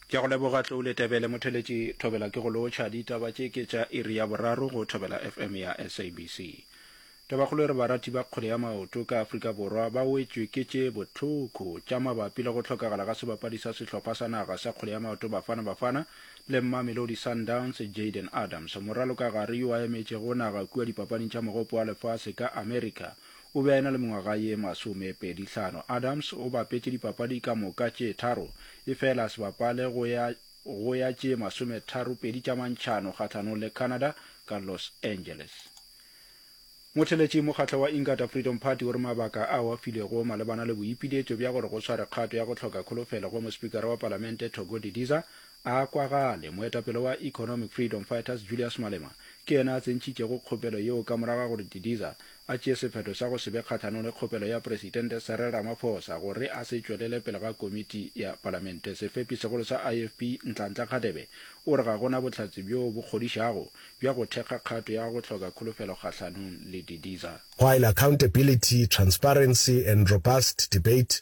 Ke a go leboga Tlou Letebele. Motheletši Thobela ke go lotšha. Ditaba tše ke tša iri ya boraro go Thobela FM ya SABC. Tabakgolo e re barati ba kgwele ya maoto ka Afrika Borwa ba wetšwe ke tše bohloko tša mabapi le go hlokagala ga sebapadi sa sehlopha sa naga sa kgwele ya maoto Bafana Bafana le Mamelodi Sundowns Jayden Adams, moraloka gare yo a emetšego naga kua dipapading tša mogopo wa lefase ka America. O be a e-na le mengwaga ye masomepedi hlano. Adams o bapetše dipapadi ka moka tše tharo, efela a se bapale go ya go ya tše masometharopedi tša mantšhano kgahlanong le Canada ka Los Angeles. Motheletši mokgahlo wa Inkatha Freedom Party o re mabaka ao a filwego malebana le boipiletšo bja gore go sware kgato ya go hloka kholofelo go Mospikara wa Palamente Togo Didiza a kwagale. Moetapele wa Economic Freedom Fighters Julius Malema ke yena a tsentšhitšego kgopelo yeo ka morago ga gore Didiza a tšee sephetho sa go se be kgahlanong le kgopelo ya Presidente Cyril Ramaphosa gore a se tšwelele pele ga komiti ya palamente. Sefepi segolo sa IFP, Nhlanhla Kgadebe, o re ga go na bohlatse bjo bo kgodišago bja go thekga kgato ya go hloka kholofelo kgahlanong le Didiza. While accountability, transparency and robust debate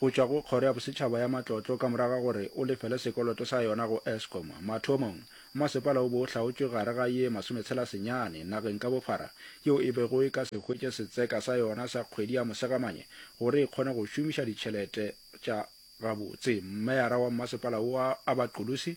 Go tšwa go Kgoro ya Bosetšhaba ya Matlotlo ka morago ga gore o lefele sekoloto sa yona go Eskom, mathomong masepala o be o hlaotšwe gare ga ye masometshela senyane nageng ka bophara yeo e bego e ka se hwetše setseka sa yona sa kgwedi ya Mosegamanye gore e kgone go šomiša ditšhelete tša gabotse. Meyara wa mmasepala wo a ba Qulusi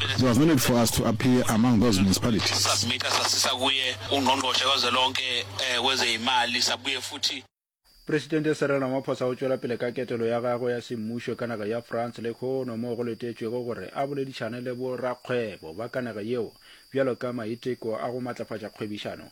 It was no need for us to appear among those municipalities. Presidente Cyril Ramaphosa o tšwela pele ka ketelo ya gagwe ya semmušo ka naga ya France lekhono moo go letetšwego gore a boledišane le bo rakgwebo ba ka naga yeo bjalo ka maiteko a go matlafatša kgwebišano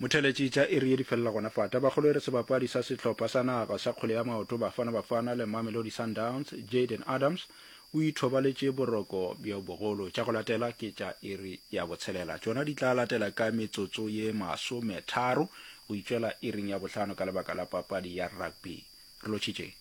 Motheletši tša iri ye di felela gona fa. Tabakgolo e re sebapadi sa sehlopha sa naga sa kgwele ya maoto Bafana Bafana le Mamelodi Sundowns, Jayden Adams o ithobaletše boroko bjo bogolo. Tša go latela ke tša iri ya botshelela. Tšona di tla latela ka metsotso ye masometharo go itšwela iring ya bohlano ka lebaka la papadi ya rugby. Re lotšhitšeng.